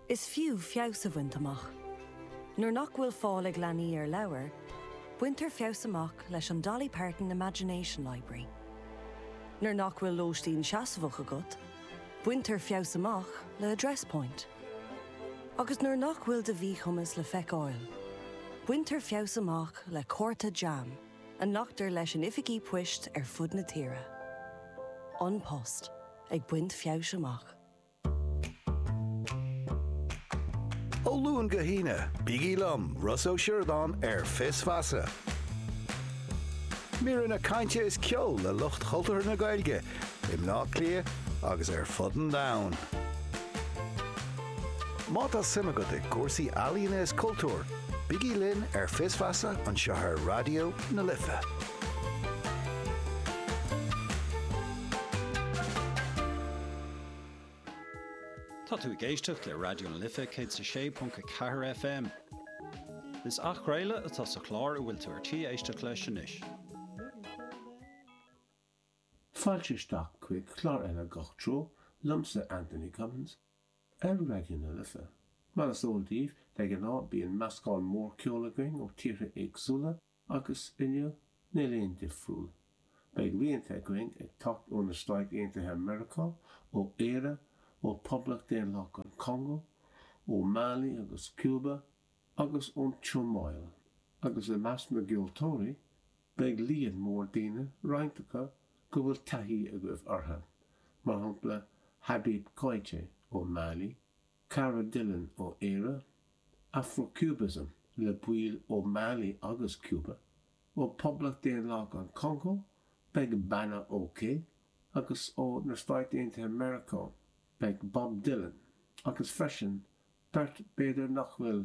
Is fiú feabhas a bhaint amach. Nuair nach bhfuil fáil ag leanaí ar leabhair, baintear feabhas amach leis an Dolly Parton Imagination Library. Nuair nach bhfuil lóistín seasmhach agat, baintear feabhas amach le Address Point. Agus nuair nach bhfuil do mhíchumas le feiceáil, baintear feabhas amach le cárta JAM a nglactar leis in oifigí poist ar fud na tíre. An Post. Ag baint feabhais amach. Ó Luan go hAoine, bígí liom, Ross Ó Sioradáin, ar Fios Feasa. Míreanna cainte is ceol le lucht chultúrtha na Gaeilge i mBaile Átha Cliath agus ar fud an domhain. Má tá suim agat i gcúrsaí ealaíona is cultúr, bígí linn ar Fios Feasa anseo ar Raidió na Life. Tá tú ag éisteacht le Raidió na Life 106.4 FM. Is athchraoladh atá sa chlár a bhfuil tú ar tí éisteacht leis anois. Fáilte isteach chuig clár eile Gach Treo liomsa, Anthony Cummins, ar Raidió na Life. Mar is eol daoibh, de ghnáth bíonn meascán mór ceoil againn ó tíortha éagsúla, Agus inniu, níl aon difriúl. Beidh rianta againn ag teacht ó na Stáit Aontaithe Meiriceá, ó Éire, ó Poblacht Daonlathach an Congó, ó Mali agus Cuba, agus ón tSomáil. Agus i measc na gceoltóirí, beidh líon mór daoine, roinnt acu go bhfuil taithí agaibh orthu, mar shampla Habib Koité ó Mali, Cara Dillon ó Éire, Afro-Cubism le baill ó Mali agus Cuba, ó Poblacht Daonlathach an Chongó beidh Bana OK agus ó na Stáit Aontaithe Meiriceá beidh Bob Dylan agus freisin beirt b'fhéidir nach bhfuil